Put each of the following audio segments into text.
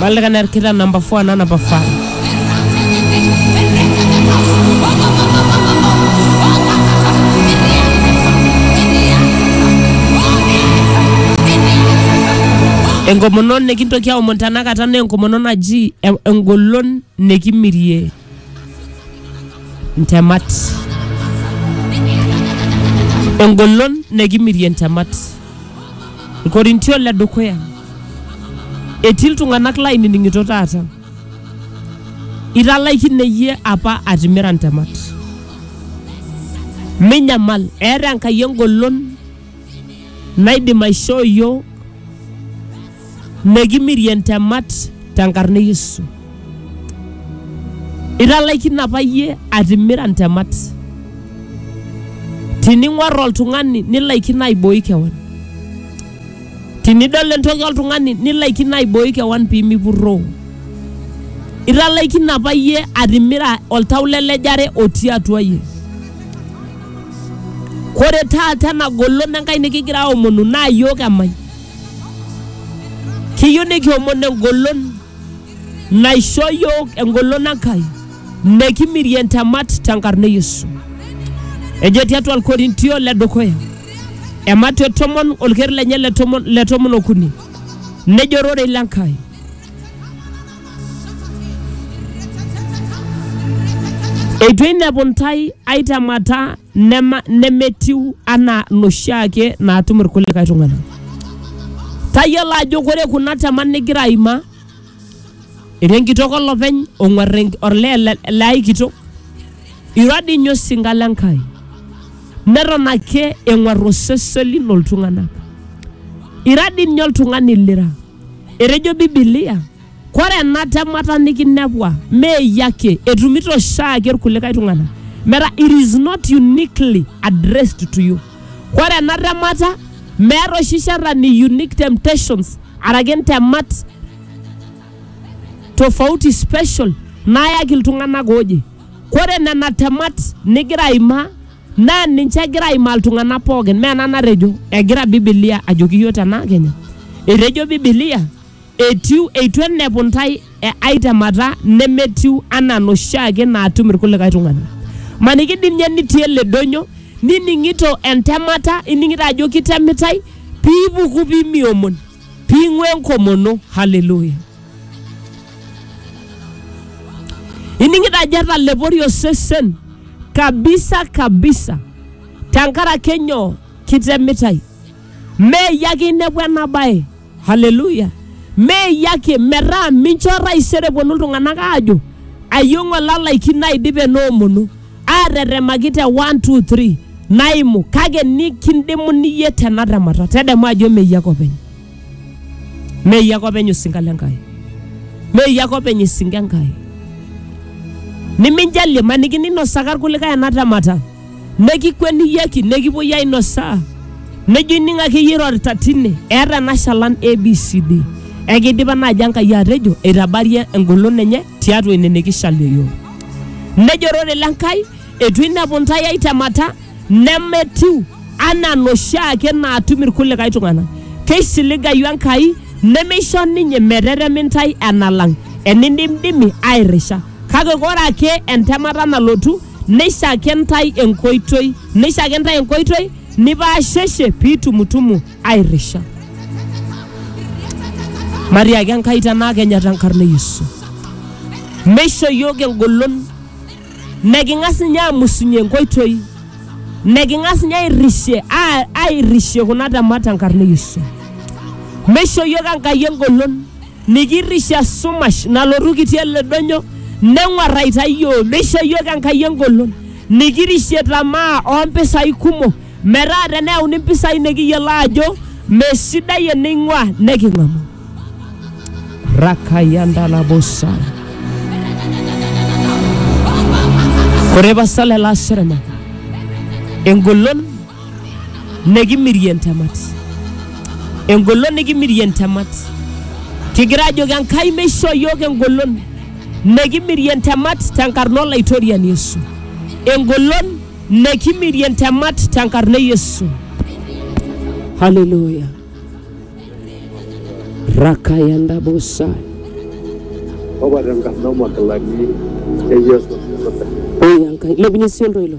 Bali kan erkita number 4 na number 5. enkomono nikintoki aomon tenakata naa enkomono naji e- engolon nikimirie ntemat engolon nekimirie ntemat ilkorintio le dukuya etii iltung'anak lainining'ito taata italaikine iyie apa atimira ntemat minyamal eeta enkai engolon naidim aishoo iyiook nekimirie ntemat tenkarna e Yesu. Italaikine apa iyie atimira ntemat. Tining'or oltung'ani nilaikino aibooi kewan. Tinidol entoki oltung'ani nilaikino aibooi kewan pee mipurroo. Italaikine apa iyie atimira oltau le lejare otii atua iyie. Kore taata ena golon Enkai nikigira aomonu naa iyiook emany. Kiyieu nikiomon engolon naisho iyiook engolon Enkai nekimirie ntemat tenkarna e Yesu. Ejo tiatua Ilkorintio le dukuya e Mateo tomon olker lenye le tomon okuni nejo ororei le Nkai eitu einepu ntae ai temata nema, nemetiu anaa noshiake naatum irkulikae tung'anak tayiolo ajo kore kuna temat nigira aimaa ira enkitok olopeny ong'uar enk- olee le- le ai kitok ira dii ninye osinka le Nkai neton ake eng'uar osesen lino iltung'anak ira dii ninye oltung'ani lira Etejo Bibilia, Kore ena temata nikinepua mee iyie ake, etumito oshiake ilkulikae tung'ana. Metaa it is not uniquely addressed to you. Kore ena temata meeta oshi shetani unique temptations araki ntemat tofauti special naayaki iltung'ana ooje. Kore nena temat nigira aimaa Naa ninche egira aimaa iltung'anak pookin, mee ena natejo. Egira Biblia ajoki iyiook tena kenya. Etejo Biblia etiu eitu enep intae ae temata nemetiu anaa inoshiake naatum irkulikae tung'anak. Maniki dii ninye nitii ele donyo nining'ito entemata, ining'ito ajo kitemitae piipuku pimiomon. Ping'u enkomono. Haleluya. Ining'ito ajo etalepori osesen kabisa kabisa tenkaraki nyoo kitemitai. Meeyie ake inepu ena bae. Haleluya. Meeyie ake metaa mincho taisere eponu iltung'anak aajo ayieu ng'ole alaikino aidipa ena omono. aatetemaki te 1 2 3 naimu kake nikindimu niyie tena temata tedemu ajo meyie ake openy meyie ake openy osinka le Nkai meyie ake openy esinka Enkai niminjalie maniki ninosaka irkulikae ena temata nekikueniyieki nekipuoi ainosaa nejo ining ake iyie irorita tine eeta ena shalan abcd ekidipa naaji Enkai atejo eitabarie engolon enye tiatua ine nikishalie iyiook Nejo ororei le Nkai, eitu ainepu intae ai temata nemetiu anaa noshiake naatum ilkulikae tung'ana. Keisiligayu Enkai nemeisho ninye meteremi intae enalang enindimdimi airrisha. Kake ore ake entemata nalotu neishaki intae enkoitoi neishaki intae enkoitoi nipaasheshe piitumutumu airisha matiaki enkai tenaa kenya tenkarna e yesu meisho yiok engolon neking'as ninye amusunye enkoitoi neking'as ninye airrishie a- airrishie kuna temat tenkarna e yesu meisho yiok enkai engolon nikirrishie esumash nalotu kitii ele donyo neng'uarraita yiok meisho yiok enkai engolon nikirishie tamaa ompisai kumok Metaa teneyauni mpisai nikiyiolo aajo mesidai eneing'ua neking'amu. Rakayandalabosa. Ore pasa lelo aserema engolon nikimirie ntemat. Engolon nikimirie ntemat. Kigira ajoki Enkai meishoo iyiook engolon nikimirie ntemat tenkarna Olaitoriani Yesu. Engolon Nekimirie ntemat tenkarna e Yesu. Haleluya. Rakayanda bosa. Opa tenkarna omakilani e Yesu. Oya Enkai. Lepunye sii oltoilo.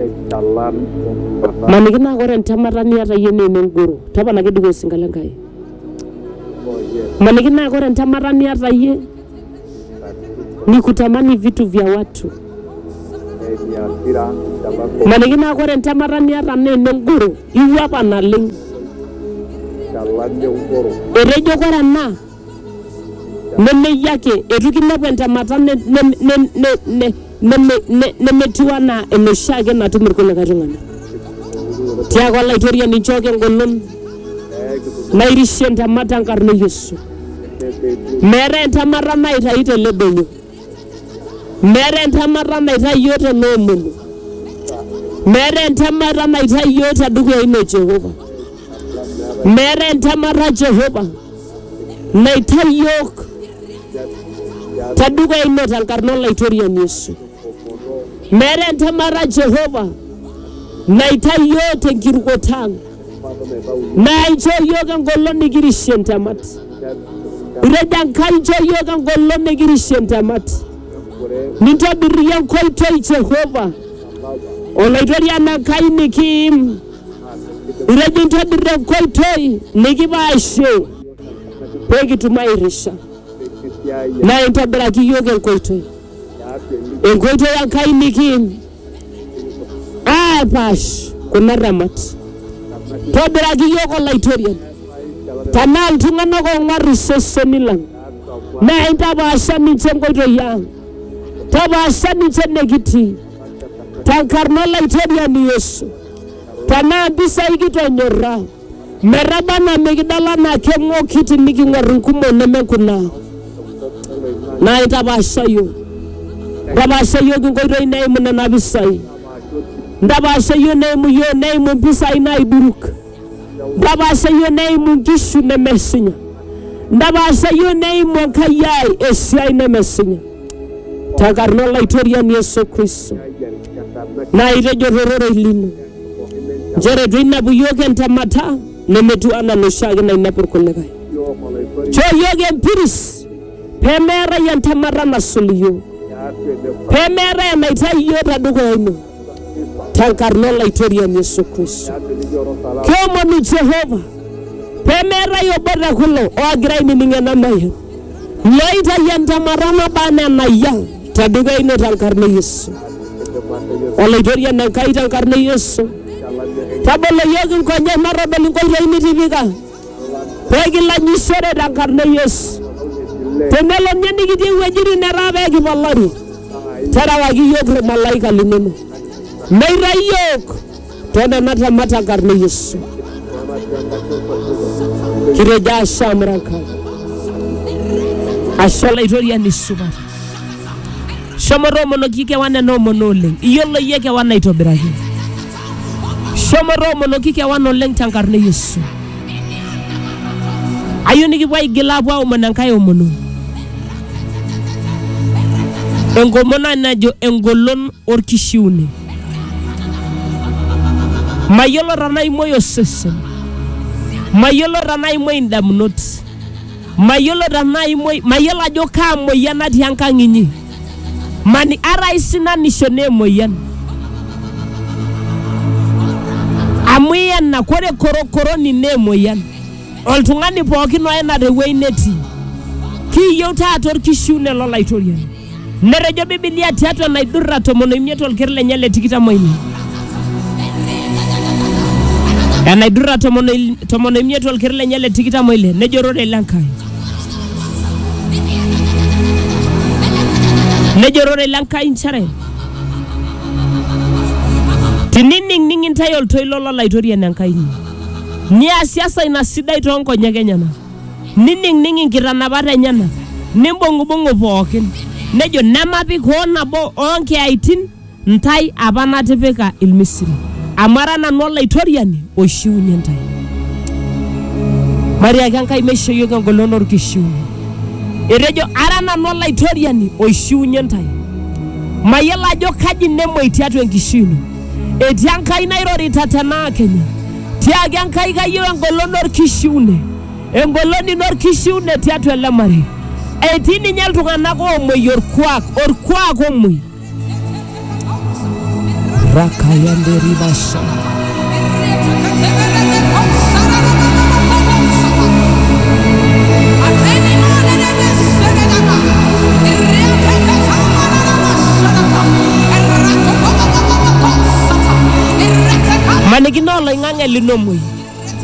Eitalam enduata Maniki naa ore entemata niata iyie naa enengoro. Toponaki dukuya osinka le Nkai. oh yes, Maniki naa ore entemata niata iyie katukul ni kutamani vitu vya watu. eni asira ntalako Maniki naa ore entemata niata naa enengoro. Iwuapa naleng. ntalami enkoro Etejo ore ena nemeyie ake eitu kinepu entemata ne- ne- ne- ne- ne- neme- ne- nemetiu anaa enoshi ake natum irkulikae tung'anak tiaku olaitoriani nchooki engolon nairishie entemata enkarna e yesu meetae entemata naitayu tele doinyo meeta entemata naitayu iyiook te noomulu meeta entemata naitayu iyiook te dukuya ino Jehova meeta entemata Jehova naitayu iyiook te dukuya ino tenkarna olaitoriani Yesu meeta entemata Jehova naitayu iyiook tenkirukoto ang naa inchoo iyiook engolon nikirishie ntemat itejo enkai inchoo iyiook engolon nikirishie ntemat nintobir iyie enkoitoi jehova olaitoriani enkai nikiim itejo intobir enkoitoi nikipaashie pee kitum airisha naa intobiraki iyiook enkoitoi enkoitoi enkai nikiim aapaash kuna temat. Tobiraki iyiook Olaitoriani, tenaa iltung'anak oong'uar iseseni lang, naa intapaasha ninche inkoitoi ang, tapaasha ninche enekitii tenkarna Olaitoriani Yesu. Tenaa mpisai kitonyorra Metaba anaa mikidol anaa keng'oki tiniking'or inkumok neme kuna naitapaasha iyiook. Ntapaasha iyiook inkoitoi neimu nena pisai. Ntapaasha iyiook neimu iyiook neimu impisai naiduruk. Ntapaasha iyiook neimu inkishu nemesinya. Ntapaasha iyiook neimu Enkai ai esiai nemesinya. Tenkarna Olaitoriani Yesu Kristo. Naa itejo tororei lino. Nchere eitu einepu iyiook entemata nemetiu anaa enoshiake nainepu irkulikae. Choo iyiook empiris pee meetae entemata nasul iyiook, pee meetae enaitayu iyiook te dukuya ino tenkarna Olaitoriani Yesu Kristo. Kiomonu Jehova pee meetae obo te kulo oogira ainining ena mayian looitayu entemata naba anaa enayiaa. Tadekwa ino tenkarna e Yesu. Olaitoriani Enkai tenkarna e Yesu. Tabolo iyiook inkonyek matodol inkoitoi nitipika pee kilanyishore tenkarna e Yesu. Tenelo ninye nikitii iwuejitin netaa pee kipalari, terewaki iyiook ilmalaika linono meitayu iyiook Tena natamata karne Yesu. Kireja ashamraka. Ashala itoria ni supat. Shomo toomonoki kewan ena omono oleng. Iyiolo iyie kewan aitobiraki. Shomo toomonoki kewan oleng tenkarna e Yesu. Ayieu nikipuo aigil aapuo aomon enkae omono. Enkomono najo engolon orkishiune. mayiolo tenaa imuoi osesen mayiolo tenaa imuoi indamunot mayiolo tenaa imuoi mayiolo ajo kaa moyian natii enkang inyi mani ata aisinanisho naa emoyian amu iyena kore korokoroni naa emoyian oltung'ani pookin oyena tewueji netii kiyieu taata orkishiune lolaitoriani Netejo Bibilia tiatua naidurra tomon oimiet olker lenye le tikitam oile. Enaidurra tomon oil- tomon oimiet olker lenye le tikitam oile nejo ororei le Nkai. Nejo ororei le Nkai nchere tinining'ning intae oltoilo lolaitoriani Enkai inyi niasiasa ina sidai too nkonyek enyena nining'ning inkitanapat enyena, nimbung'ubung'u pookin, nejo, Nemapik hoo nabo oo nkiyaitin intae apa natipika Ilmisiri, amu ara nanu Olaitoriani oishiunye intae. Matiaki Enkai meisho iyiook engolon olkishiunye. Etejo, Ara nanu Olaitoriani oishiunye intae. Mayiolo ajo kaji nemoi tiatua enkishui ino. Etii Enkai nairorita tenaa kenya. Tiaki Enkai kayieu engolon orkishiune, engolon ino orkishiune tiatua ele marei. Etii ninye iltung'anak oomuoi orkuak, orkuak omuoi. Rakayande ribasha. manikino oloing'ang'e linomoi